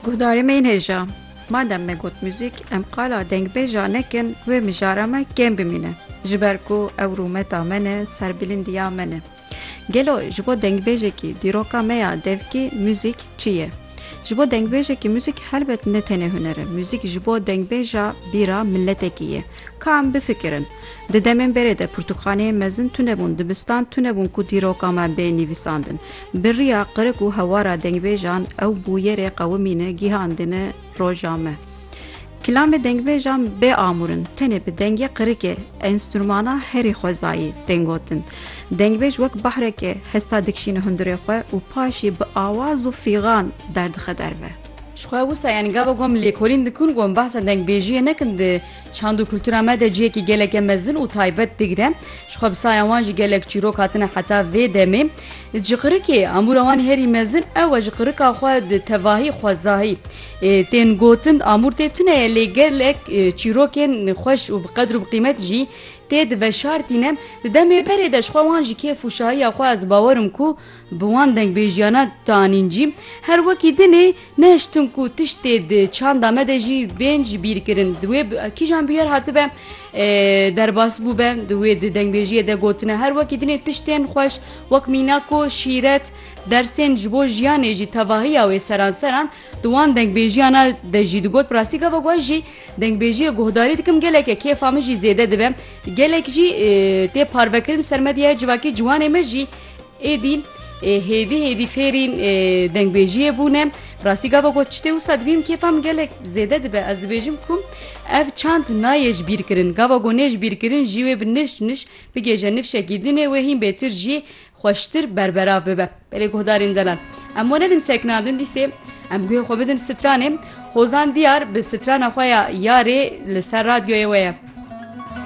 Guhdarê me yên hêja. Madem me got muzîk, em qala dengbêja nekin wê mijara me kêm bimîne. Ji ber ku ew rûmeta me ne, serbilind-iya me ne. Gelo ji bo dengbêjekî dîroka me ya devkî muzîk çi ye? Ji bo dengbêjekî muzîk helbet ne tenê huner e. Muzîk ji bo dengbêja bîra miletekî ye. Ka em bifikirin. Di demên berê de pirtûkxaneyên mezin tune bûn, dibistan tune bûn ku dîroka me bê nivîsandin. Bi riya qirik û hewara dengbêjan ew bûyerê qewimîne gîhandine roja me. Kilamê dengbêjan bê amûr in, tenê bi dengê qirikê, enstrûmana herî xwezayî tên gotin. Dengbêj wek bahreke hesta dikişîne hundirê xwe û paşî bi awaz û fîgan derdixe derve. Ji xwe wisa yani gava gom lêkolîn dikin gom behsa dengbêjiyê nekin di Çand û kultura me de cihekî geleke mezin û taybet digire. Ji xwe bi saya wan jî gelek çîrok hatine heta vê demê. Ji qirikê amûra wan herî mezin ew e ji qirika xwe di tevahî xwezahî tên gotin amûr tê tune ye lê gelek çîrokên xweş û bi qedr û bi qîmet jî tê diveşartîne. Di demê berê de ji xwe wan jî kêf û şahiya xwe ez bawerim ku Bi wan dengbêjiyana tanîn jî her wekî dinê nehiştin ku tiştê di çanda me de jî bên ji bîr kirin. Di wê kîjan bûyer hatibe derbas bûbe di wê di dengbêjiyê de gotine her wekî dinê tiştên xweş wek mîna ku şîret dersên ji bo jiyanê jî tevahiya wê seranseran di wan dengbêjiyana de jî digot bi rastî gava ku ez jî dengbêjiyê guhdarî dikim geleke kêfa min jî zêde dibe gelek jî tê parvekirin ser medyaya civakî ciwanê me jî Êdî hêdî hêdî fêrî dengbêjiyê bûne rastî gava got çitê wisa dibînim kêfa min gelek zêde dibe ez dibêjim ku ev çand nayê ji bîr kirin gava ku nê ji bîr kirin jî wê bi niş niş bigêje nifşekî dinê wê hîn bêtir jî xweştir berberav bibe belê guhdarên delan em we nedin sekna din dîsê em guhê xwe bidin stranê hozan diyar bi strana xwe ya yarê li ser radyoyê we ye.